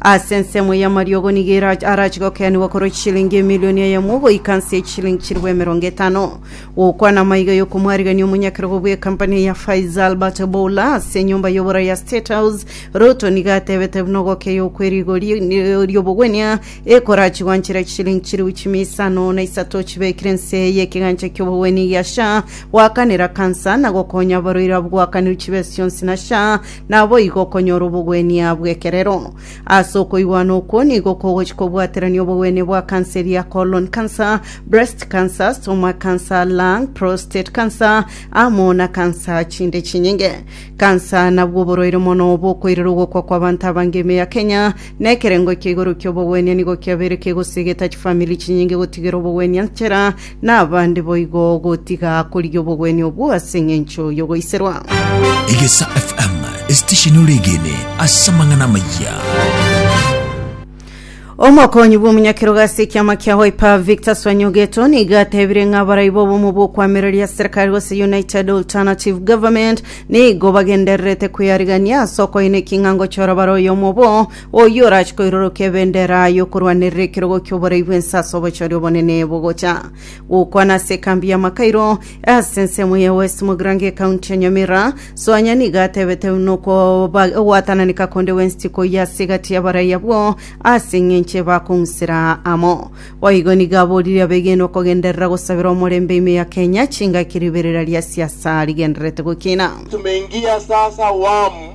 Ase ensemo y'amariogo nigo era- arache gokeanigwa korwa chishilingi emilioni eyemo goika nse y'echishilingi chilifu emerongo etano gokwana amaiga y'okomwarigania omonyakerogo bw'ekampani ya Faiza Albert Boula ase enyomba y'obora ya State House Ruto nigo atebete buna ogokeywa okw'erigori ri'obogwenia ekorachi gwanchera chishilingi chilifu chimia isano na isato chibekire nse y'ekegancha ki'obogwenia gia SHA gwakanera kansa na gokonya abarwaire abwo gwakanirwe chibesa chionsi na SHA Naboigo okonyora obogwenia bw'ekerero. Ase okoigwana okwo nigo kogochia kobwaterania obogwenia bwa kansa eria colon cancer, breast cancer, stomach cancer, lung, prostate cancer, amo na kansa chinde chinyinge. Kansa nabwo oborwaire mono bokoirera ogokwa kw'abanto abange ime ya Kenya, na ekerengo ekia igoro ki'obogwenia nigo kiabeire kegosiigeta chifamiri chinyinge gotigera obogwenia nchera na abande boigo gotiga korigia obogwenia obwo ase engencho yogoiserwa. Egesa FM, esitesheni ore egene ase amang'ana amayia. Omokonyi bw'omonyakerogo ase ekiama kia Wiper Victor Swanyogeto nigo atebire ng'a abarai b'obomo bw'okwamereria serikali gose United Alternative Government nigo bagendererete kweyarigania ase okoina eking'ango chora bare oyomo obo Oyio orache koiroroka ebendera y'okorwanerera ekerogo ki'oborai bw'ense ase obochori obonene bogocha gokwana ase ekambi ya Makairo ase ensemo ya West Mogrange ekaunti ya Nyamira. Soanya nigo atebete buna okoba- ogwatananeka konde West koyia ase egati y'abarai abwo ase eng'enche bakong'usera amo. Boigo nigo aborire abegenwa kogenderera gosabera omorembe ime ya Kenya chingaki riberera ria siasa rigendererete gokina. Tumeingia sasa awamu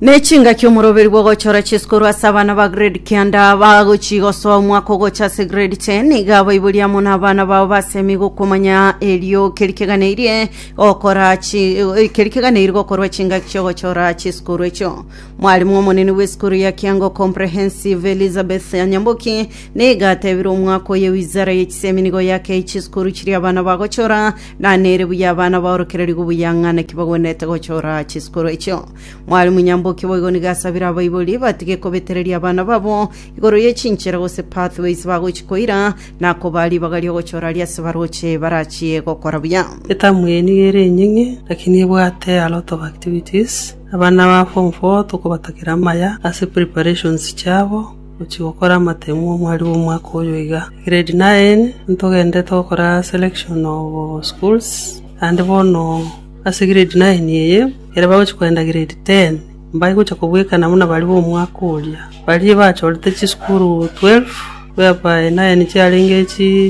Ne chingaki omoroberi bw'ogochora chiesu korwa ase abana ba grade kianda bagochia gosoa omwaka ogocha ase grade 10 iga abaiboria amo n'abana bao basemi gokomanya erio keri keganeirie gokora chi eh, keri keganeirie gokorwa chingaki chi'ogochora chiesu korwa echio mwarimu omonene bw'esukuru ya kiango comprehensive elizabeth anyamboki niga atebire omwaka oye wizara ye chisemi nigo yakei chiesu korwa chiria abana bagochora na nere buya abana baorokereri gobuyang'ana ki bagwenerete gochora chiesu korwa echio Mwalimu Nyamboki boigo nigo asabire abaibori batige kobetereria abana babo igoro ye chinchera gose pathways bagochi koira na koba ribaga riogochora ria ase baroche barachie gokora buya. Etamu eye nigo ere enying'e lakini ebwate a lot of activities. Abana ba form four tokobatakera amaya ase preparations chiabo gochia gokora amatemu omwari bw'omwaka oyo iga. Grade nine ntogendete gokora selection of schools naende bono Ase grade nine eye, ekero bagochia kogenda grade ten, mbaye gochia kobwekana buna baria b'omwaka oria. Baria bachorete chisukuru twelve, whereby nine chiarenge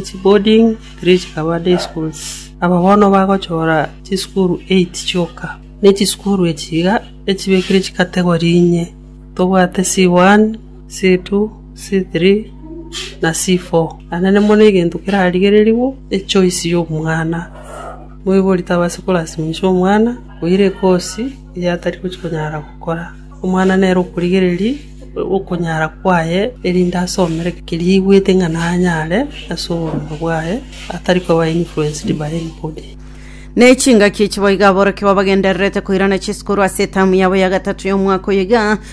chiboarding, three chikaba day schools. Aba bono bagochora chisukuru eight chioka, ne chisukuru echi iga echibekire chicategory inye, tobwate C1, C2, C3, na C4. Naende mono egento kerarigererigwe, echoice y'omwana. Moibori tabase korasiminsa omwana oira ekosi eria atari gochia konyara gokora. Omwana nere okorigereria okonyara kwaye, erinde asomere keria aigwete ng'a nanyare ase oboronge bwaye, atari koba influenced by anybody. N'echingaki echi boigo aborokia babagendererete koirana chisukuru ase etamu yabo ya gatato y'omwaka oyo iga,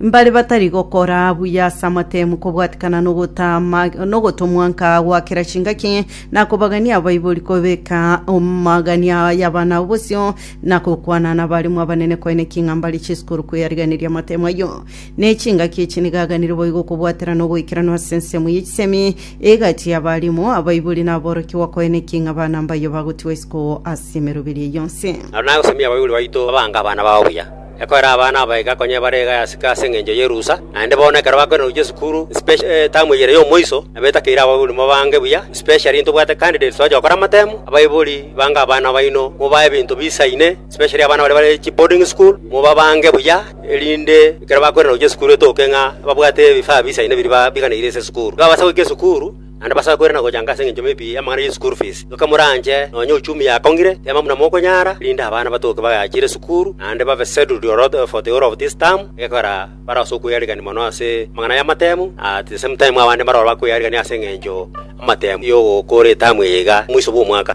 Mbare batari gokora buya ase amatemu kobwatikana nogotama nogotomwa nka gwa kera chingaki, na kobagania abaibori kobeka omagania y'abana bosio, na gokwana nabaremu abanene koine king'a mbare chisukuru kweyariganiria amatemu ayio. Ne chingaki echi nigo aganire boigo kobwatera nogoikeranu ase ensemo ye chisemi egati y'abaremu, abaibori na aborokigwa koine king'a abana mbayio bagotigwa isiko ase emeroberi eyio yonsi. Naro nagosemia abaibori baito abange abana bao buya. Ekoera abana abaika konya ebara iga yasika ase engencho y'erusa, naende bono ekero bakoirana gochia esukuru, especially etamu eye ere y'omoiso, nabetakeire abaibori mobaange buya, especially intobwate candidates bagochia gokora amatemu, abaibori bange abana baino, mobae ebinto bisaine, especially abana baria bare chiboarding school, mobabaange buya, erinde ekero bakoirana gochia esukuru etoke ng'a babwate ebifaa bisaine biria ba- biganeire ase esukuru. Babasa goika esukuru. naende basakwere na gochanga ase engencho maybe y'amang'ana ye school fees. Inwe kamoranche nonya uchumi yakong'ire, teema buna mokonyara, erinde abana batoke bagachire esukuru, naende babe settled ororo for the whole of this term, egekorera bare ase okwearigania mono ase amang'ana y'amatemu, na at the same time abande mbaroro bakwearigania ase engencho amatemu y'ogokora etamu eye iga omoiso bw'omwaka.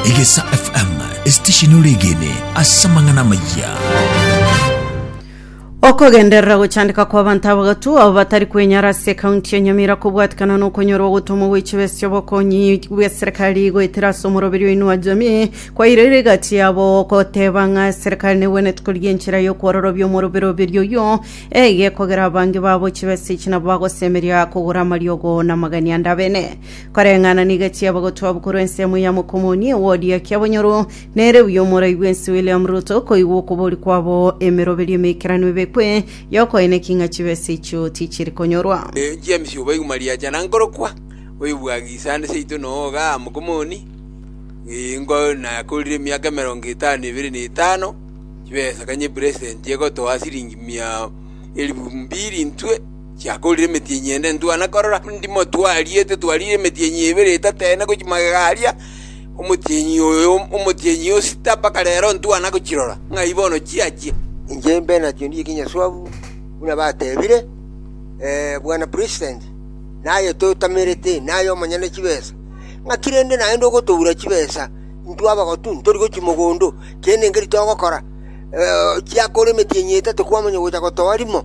Egesa FM, esitesheni ore egene ase amang'ana amayia. Okogenderera gochandeka kw'abanto abagatu abo batari kwenyara ase ekaunti ya Nyamira kobwatikana nokonyorwa ogotomwa gwe chibesa chi'obokonyi bw'eserekari goetera ase omoroberi o Inua Jamii kwaire rigati yabo goteba ng'a eserekari negwenerete korigia enchera y'okwororobia omoroberoberio oyio egekogera abange babo chibesa echi nabo bagosemeria kogora amariogo na amagani ande abene koreng'ana niga chi'abagatu abwo korwa ensemo ya Mokomoni ewodi ya Kiabonyoru Nere uyo omorai bw'ense William Ruto koigwa okobori kwabo emeroberio emeikeranu ebekwe y'okoeneki ng'a chibesa echio tichiri konyorwa. James oboigu mariacha na nkorokwa, oyobwage isande seito na owoga amo komoni, ingo nakorire emiaka emerongo etano nebere na etano, chibesa kanye epresent egotoa siringi mia elifu mbiri intwe chiakorire emeti enyende ntwana korora, ndimotwarie totwarire emeti enye ebere etatene gochia magega aria, Omotienyi oyo, omotienyi o sita mpaka rero ntwana gochirora, ng'ai bono chiachia? Inche imbe nachio ndire kinyaswabu, buna batebire bwana president, naye totamerete, naye omonyene chibesa. Ng'aki rende naende ogotoura chibesa intwe abagotu ntori gochia mogondo, kende nkeri togokora? Chia kore emetienyi etato kwamanya gocha gotoa rimo.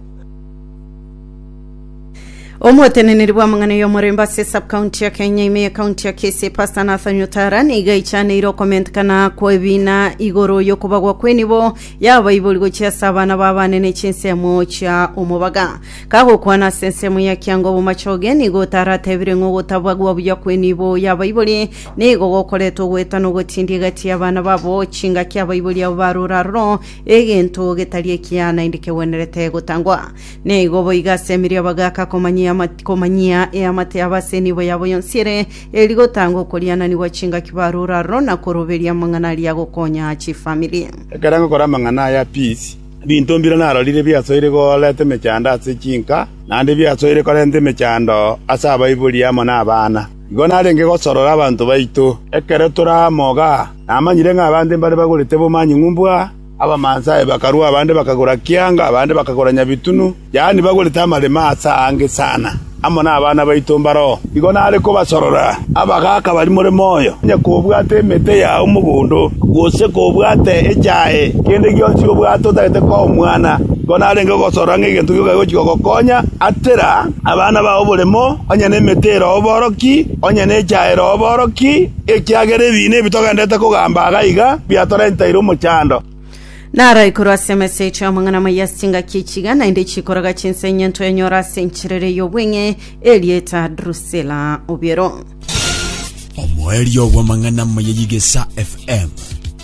Omoteneneri bw'amang'ana y'omorembe ase subcounty ya Kenya ime y'ecounty ya Kisii Pastor Nathan Otara nigo aichaneire okomentekana kw'ebiina igoro y'okobagwa kw'enibo y'abaibori gochia ase abana b'abana ne chinsemo chia omobaga. Kagokwana ase ensemo ya Kianga Obomachoge nigo Otara atebire ng'a ogotabagwa buya kw'enibo y'abaibori nigo gokoreta ogoeta na ogotindia egati y'abana babo chingaki abaibori abo barure aroro egento getari ekiya naende kegwenerete gotangwa. Nigo boigo ase emerio bagaaka komanyia ama- komanyia eamate yabo ase enibo yabo yonsi ere, eri gotanga okoriananigwa chingaki barure aroro na koroberia amang'ana aria agokonya chifamiri. Ekero ngokora amang'ana aya peace, ebinto mbire narorire biasoire koreta emechando ase chinka, naende biasoire korenta emechando ase abaibori amo nabana. Igo narenge gosorora abanto baito ekero tore amo igaa, namanyire ng'a abande mbare bagorete b'omonyingu mbwa, Abamansae bakarua, abande bakagora kianga, abande bakagora nyabitunu, yaani bagorete amarema aase aange sana, amo nabana baito mbaroo. Igo nare kobasorora abagaaka barimore moyo, onye kobwate emete yao mogondo, gose kobwate echae, kende gionsi obwate otagete koa omwana, igo narenge kogosorora ng'a egento gioka gegochia kogokonya. Atera abana bao oboremo, onye nemete eroo oboroki, onye nechae eroo oboroki. Ekiagera ebiina ebi togenderete kogamba iga iga biatorenteire omochando. Narai korwa ase emesecho y'amang'ana amaya ase chingaki echiga naende chikoroga chinsa enyento yanyora ase encherere y'obweng'e erieta Drusilla Obiero. Omoerio bw'amang'ana amaya y'Igesa FM.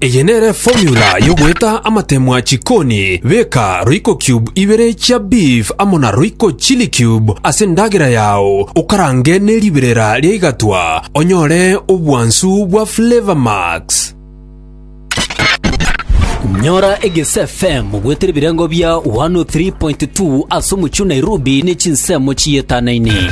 Eye nere formula y'ogoeta amatemwa chikoni, beka royco cube ibere chia beef amo na royco chili cube ase endagera yao, okarange ne riberera ria igatwa, onyore obwansu bwa flavour max. Nyora Egese FM goetera ebirengo bia 103.2 ase omochie o Nairobi ne chinsemo chiyetanainie.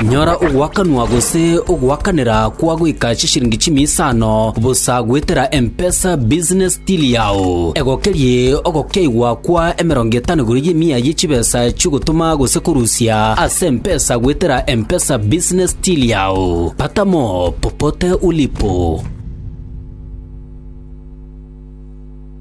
Nyora ogoakanwa gose ogoakanera kwa goika chishiringi chimia isano bosa goetera M-Pesa Business Till yao. Egokerie ogokeigwa kwa emerongo etano igoro y'emia ye chibesa chi'ogotoma gose korusia ase M-Pesa goetera M-Pesa Business Till yao. Pata mo popote ulipo.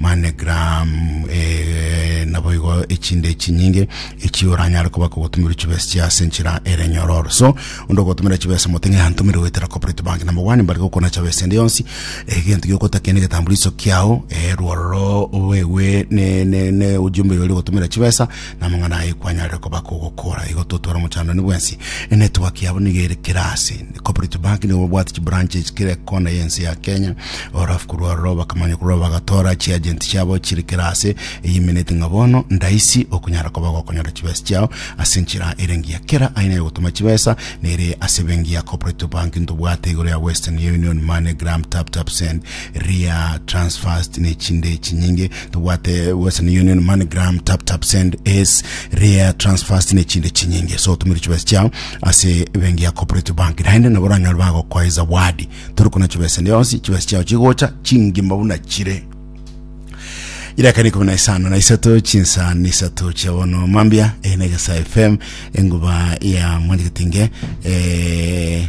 MoneyGram, Ee, naboigo echinde echinyinge echio oranyare koba kogotomerwa chibesa chia ase enchera ere nyororo. So, onde ogotomera chibesa mote ng'a yantomire goetera Corporate Bank na mobwane mbare gokona chabesa ende yonsi, egento giokotaka nege egetambuliso kiao, ee, rwororo oegwe ne ne ne ujumbe oria ogotomera chibesa, Namang'ana aye kwanyarire koba kogokora igo totware omochandani bwensi. Enetwork yabo nigo ere kera ase. Corporate Bank nigo babwate chibranches kera ekona y'ense ya Kenya. Orafu korwa aroro bakamanya korwa bagatora chiagent chiabo chire kera ase. Eye emenete ng'a bono ndaisi okonyara koba gokonyora chibesa chiao ase enchera ere engiya. Kera aina yogotoma chibesa nere ase ebenki ya Corporate Bank ntobwate igoro ya Western Union, MoneyGram, TapTapSend, ria transfast ne chinde chinyinge tobwate western union moneygram tap tap send es ria transfast ne chinde chinyinge so tumire chibesa chiao ase bengi ya cooperative bank naende nabo oranyore bagokoe zawadi tori kuna chibesa yonsi chibesa chiao chigocha chingima buna chire irekana ikumi na isano na isato chinsani isato chia bono mambia eh, negesa fm enguba ya mwandikitinge eh,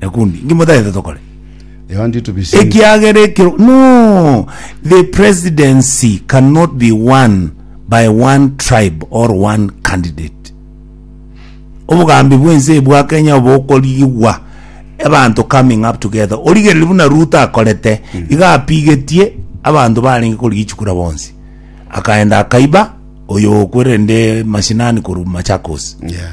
ekundi inki motagete tokore They want you to be saved. ekiagera ekero no the presidency cannot be won by one tribe or one candidate obogambi bwense bwa kenya obokorigigwa abanto coming up together origereri buna ruto akorete iga apigetie abanto barenge korigia chikura bonsi akaenda akaiba oyo okwerende mashinani korwa machakos Yeah.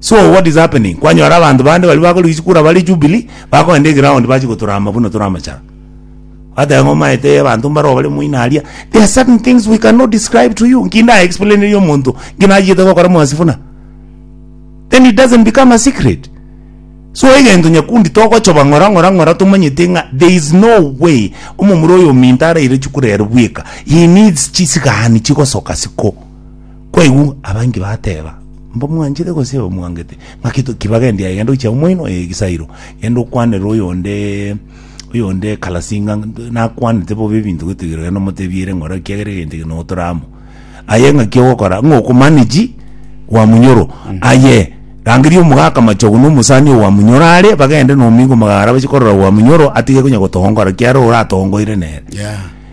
So what is happening? Kwanyora abanto bande baria bakore gichikura bare Jubilee, bakogenda eground bache gotorama buna tore amachara. Bateba ng'a omaete ee abanto mbaroo bare moino aria. There are certain things we cannot describe to you. Nki nda explainerie omonto nki nachiete gokora mwasi buna? Then it doesn't become a secret. So egento nyakundi togochoba ng'ora ng'ora ng'ora tomanyete ng'a there is no way omomura oyo ominto araire chikura ere bweka. He needs chisikaani chigosoka siko. Kwaigwa abange bateba, Mbamwanchete gose mbamwangete? Ng'aki to- kibagende aye, genda oche omoino oye egesairo, genda okwanere oyonde oyonde ekalasi ng'a nakwanete bobe ebinto gotigirira genda omotebie ere ng'ora ekiagera egento eke nogotora amo. Aye ng'aki ogokora ng'a oko manage gwa munyoro. Aye rangeria omogaka machogu na omosani oyo gwa munyoro are, bagende nomingo magara bache korora gwa munyoro atige konya gotongora ekiagera oratongoire nere. Yeah.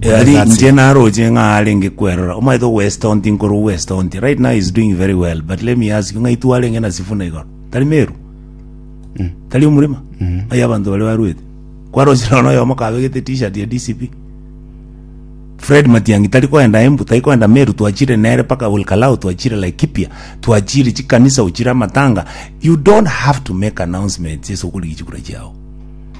Eari That's inche it. naroche ng'a arenge kwerora omaete ogwesita onti nkoro ogwesita onti right now is doing very well but let me ask you ng'ai twarenge na sifuna igoro tari meru tari omurima ng'ai abanto bare barwete kwaroche nono oyomo kabegete t-shirt ya dcp fred matiangi tari koenda embu tari koenda meru twachire nere mpaka olkalau twachire laikipia twachire chikanisa ochire amatanga you don't have to make announcements ase okorigia chikura chiao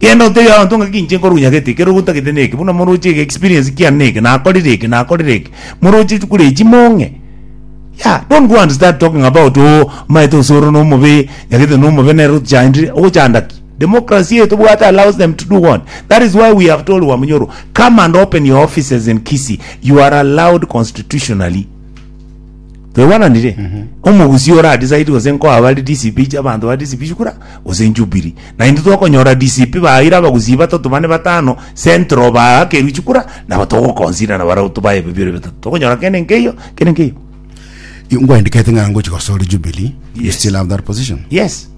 Genda otebie abanto ng'aki inche nkorunyagete ekero ogotagete neke, buna moroche ege experience kiane neke, nakorire eke, nakorire eke, moroche chikure echi mong'e. Yah, don't go and start talking about oh omaete gose ore nomobe, nyagete nomobe nere otochandire, ogochanda ki? Democracy eye tobwate allows them to do what? That is why we have told Wamonyoro, come and open your offices in Kisii, you are allowed constitutionally. Twaibaranire? Omogusi ore a decide gose nkoa bare DCP chia abanto ba DCP shikura gose Jubilee. Naintwe tokonyora DCP baire abagusi batato bane batano, Central baakerwe chikura nabo togo consider na barabwo tobae ebebio bire bitato. Tokonyora kende nkeiyo, kende nkeiyo. Ingwendikete ng'a ngochi gosore Jubilee, you Yes. still have that position. Yes.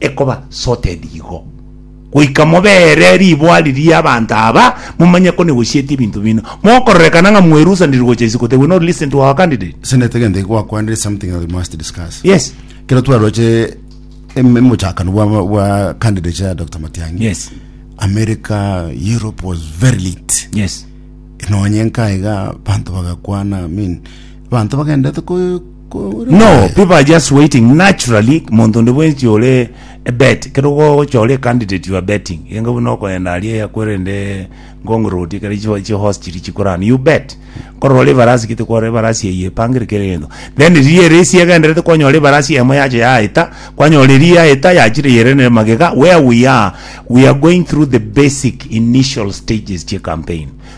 ekoba sorted igo, goika mobeere riboa riria abanto aba, momanye ko negosietie ebinto bino, mogokororekana ng'a mwerusaniri gocha isiko, they will not listen to our candidate. Ase naete egento eke gwakwanire is something that we must discuss. Yes. Kero twaroche em- emochakano bwa, bwa candidates ya Dr. Matiang'i. Yes. America, Europe was very lit. Yes. Nonye nka iga banto bagakwana, I mean, banto bagendete ko No, people are just waiting naturally monto onde bwensi ore ebet kero gochora candidate you are betting enga buna okoenda aria yakwerende ngong road kare chiwa chi horse chiri chikorana you bet korora ebarasi kite kwara ebarasi eye pangire kere gento then riria ere isi egenderete kwanyora ebarasi emo yacha yaeta kwanyora eri yaeta yachire yere ne magega where we are we are going through the basic initial stages chie campaign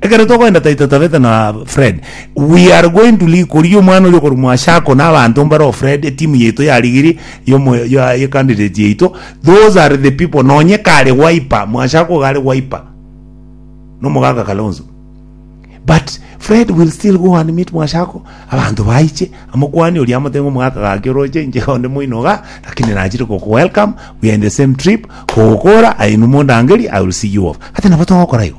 Ekero togoenda tai totabete na Fred. We are going to league koria omwana oria okorumwa ase ako na abanto mbaro Fred etimu yaito ya ligiri yomo ya ye candidate yaito. Those are the people nonye kare Wiper mwase ako iga are Wiper. No mogaga Kalonzo. But Fred will still go and meet mwase ako abanto baiche amokwani oria amote ng'a omogaka gaki oroche inche iga onde moino iga lakini nachire goku welcome we are in the same trip kogokora aye inwe mondangerie I will see you off. Gati nabo togokora igo.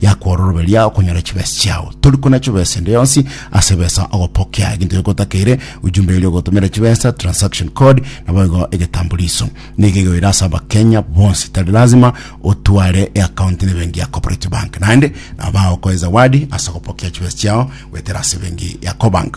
yakwa ororoberia okonyora chibesa chiao tori kona chibesa ende yonsi ase besa ogopokea eginto gekotakeire ujumbe erio ogotomera chibesa transaction code nabo igo egetambuliso nigo igoira ase abakenya bonsi tari lazima otware eakaunti ne bengi ya cooperative bank naende nabo bagokoe zawadi ase ogopokea chibesa chiao goetera ase bengi ya cobank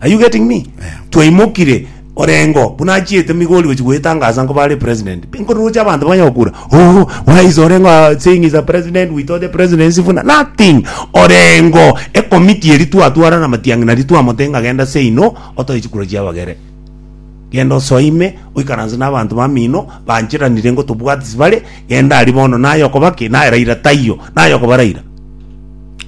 Are you getting me? Twaimokire orengo buna achiete Migori gochia goetangasa nkoba are president. Nkoruruche abanto banye gokura. Oh, why is orengo uh, saying he's a president? We thought the president is Sifuna. Nothing. Orengo ekomiti eri twatwara na matiang'i nari twamotenga genda say no otoe chikura chia abagere. genda osoime oikaranse na abanto bamino banchiranire ngo tobwatisi bare genda ari bono naye okoba ki naye raira taiyo naye okoba raira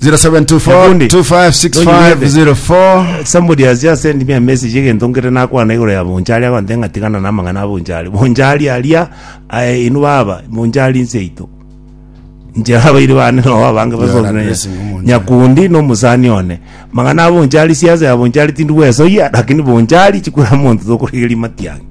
Nabundi, 0724256504 Somebody has just sent me a message egento nkere nakwana igoro ya Bonchari agontee ng'a tigana na amang'ana a Bonchari. Bonchari aria aye inwe baba, Bonchari inseito. Inche abairi bane nao abange You are basonsi na addressing Omonchari. Nyakundi na omosani one. Mang'ana a Bonchari siasa ya Bonchari tindi gwesoyia lakini Bonchari chikura monto tokorigeria Matiang'i.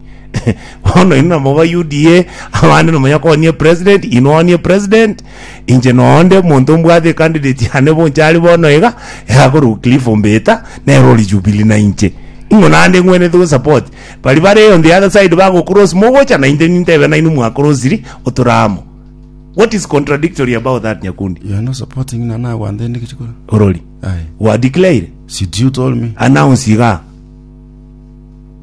Bono inwe nabo ba UDA abande nomonyakoonie president inwe onie president Inche noonde omonto mbwate ecandidate yane bonsi are bono iga, iga akorokwa Cliff Ombeta, nere ore Jubilee na inche. Ing'o naende ng'wenerete gosupport? Baria bare on the other side bagocross mogocha na intwe nintebe nainwe mwacrossiri otora amo. What is contradictory about that Nyakundi? You are not supporting na nagwante inde kichikora. Orori. Aye. Wa declare, Should you told me? announce iga.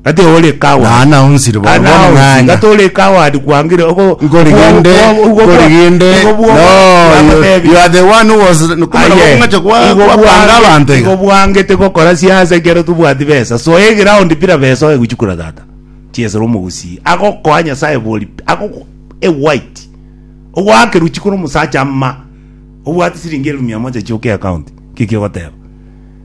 Gati ore ecoward. Na Anna onsire bono, Anna bono onsi, ng'anya. gati ore ecoward kwangire ogo- Nkori ogo- gende, ogo- ogo- nkori gende. ogo- ogo- No, you- bakotebia. you are the one who was- kumana Aye. kong'acha kwa- Igo kwa- bwange- kwanga abanto iga. igo bwangete gokora siasa ekero tobwati besa so eground bira besa oye gochukura tata chiesera omogusii agokoa nyasaye bori agogo e white ogwake ruchiko na omosacha ama obwate siringi elufu mia moja chioka account kiki ogoteba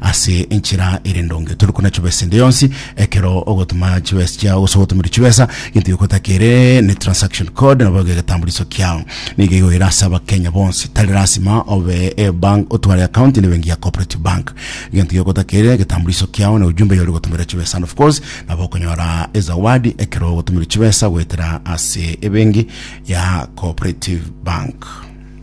Ase enchera ere ndonge, tore kona chibesa ende yonsi ekero ogotoma chibesa chiao gose ogotomerwa chibesa, gento gioka otakere ne transaction code nabo egetambuliso kiao. Nigo igoira ase abakenya bonsi, tari lasima obe ebank otware account ne ebenki ya cooperative bank. Gento gioka otakere egetambuliso kiao ne ujumbe yori gotomerera chibesa and of course nabo okonyora ezawadi ekero ogotomerwa chibesa goetera ase ebenki ya cooperative bank.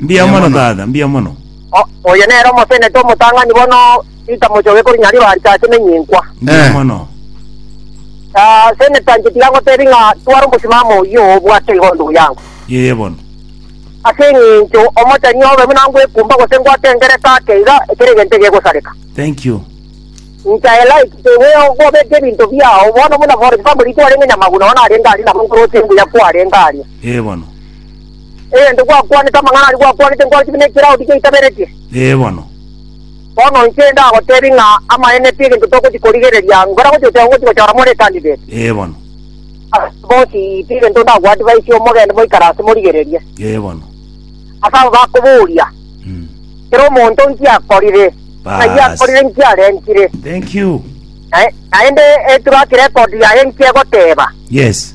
Mbuya mono, tata, mbuya mono. O- oyo nere omotenete omotang'ani bono, Peter Mochoge kori Nyariro arisache nenyinkwa. Mbuya Eh. mono. Ah, Senator inche tiga ngotebi ng'a tware omosimamo oyio obwate igo ndugu yangu. Yeye bono. Ase eng'encho omoteni obe buna ngwekumba gose ngwate engereka ake iga, ekero egento egegosareka. Thank you. Inche I like the way ogobeka ebinto biao, bono buna for example intwe arenge Nyamaguna bono arenge aria nabo nkoroche mbuya kwarenge aria. Yeye bono. Egento gwakwanete, amang'ana aria gwakwanete nkore ching'aki n'ekerago tigiaitaberetie? Ee bono. Bono inche ndagoteebia ng'a amaene pi egento togochia korigereria, nkore gochia goteba ngochia gochora more candidate? Ee bono. Ase abwo bonsi pi egento ndagoadvisie, mogende moikare ase morigererie. Ee bono. Ase abo bakoboria, Mm. Kera omonto nki akorire? Ng'ai Baas. akorire? Nki arentire? Thank you. Nae- Naende eturakire record yaye nki egoteba? Yes.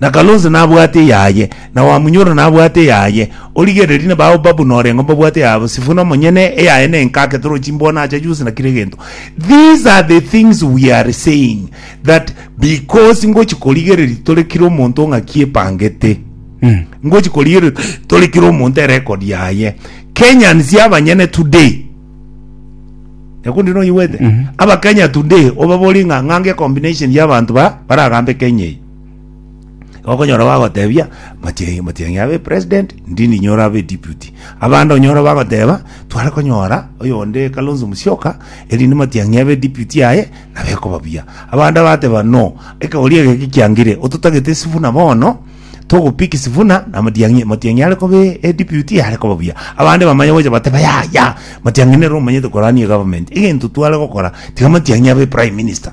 Na Kalonzo nabwate eyaye, na Wamunyoro nabwate eyaye, origererie na bao babu norengo mbabwate eyabo, Sifuna omonyene eyaye nenkake toro chimbwana acha chionsi na kera egento. These are the things we are saying that because ngochi korigereria tore kira omonto ng'aki epangete. Ngochi korigereria tore kira omonto erecord yaye. Kenyans abanyene today Nyakundi noigwete? Abakenya today obaborie ng'a ng'ange combination y'abanto ba baragambe Kenya eye. Okonyora bagotebia matienge matienge abe president ndini nyora abe deputy abande onyora bagoteba tware konyora oyonde Kalonzo Musyoka erinde matiang'i abe deputy aye nabe ekoba buya abande bateba no ekegori ege gikiangire ototagete Sifuna bono togopiki Sifuna na matiang'i matiang'i are kobe e deputy are koba buya abande bamanye gocha bateba ya ya matiang'i nere omanyete korania government egento tware gokora tiga matiang'i abe prime minister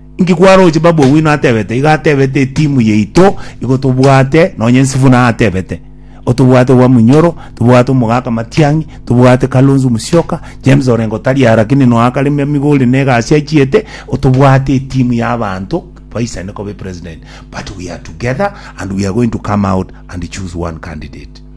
Inki kwaroche babu owino atebete iga atebete etimu yaito igo tobwate nonye sifuna atebete otobwate owa munyoro tobwate omogaka matiangi tobwate kalonzo musioka james orengo tari aa lakini noe akare me migori ne egasi achiete otobwate etimu ya abanto baisane kobe president but we are together and we are going to come out and choose one candidate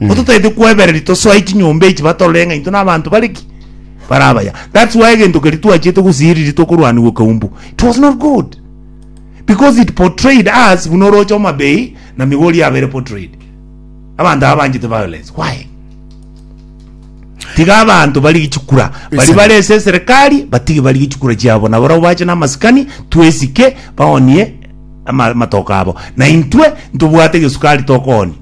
Igo totaete kwebereri tosoe chinyomba echi batorore ng'a into nabanto bare ki bare abaya that's why egento keria twachiete gosiiriria tokorwanigwa kaumbu it was not good because it portrayed us buna oroche omabei na migori abere portrayed abanto aba banchete violence why tiga abanto bari gichikura bari Listen. bare ase eserikari batige bari gichikura chiabo na barabo bache na amasikani twesike baonie ama- amatoka abo na intwe ntobwate gesukari tokooni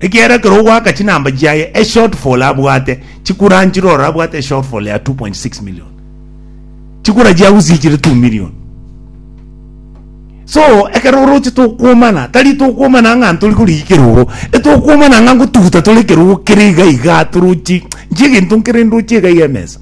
Ekiagera ekero ogoaka chinamba chiaye eshortfall abwate chikura nchire ore abwate eshortfall ya 2.6 million. Chikura chiagusie chire 2 million. So ekero oroche tokuomana tari tokuomana ng'a ntori korigia ekerogo etokuomana ng'a ngotuguta tore ekerogo kere iga iga torochi nchi egento nkere ndochi iga iga emesa.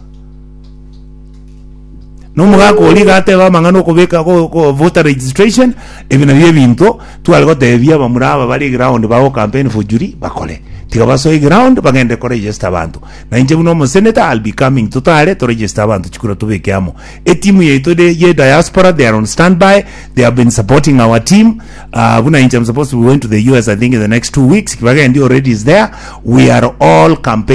Nomogaka oria iga ateba amang'ana okobeka go- go- voter registration ebi nabio ebinto tware gotebia abamura aba bare eground bago campaign for Julie bakore tiga basoe eground bagende koregister abanto na inche buna omosenator I'll be coming totare toregister abanto chikura tobeke amo etimu yaito ere ye diaspora they are on standby they have been supporting our team ah, buna inche I'm supposed to be going to the US I think in the next two weeks kibagendi already is there we are all campaign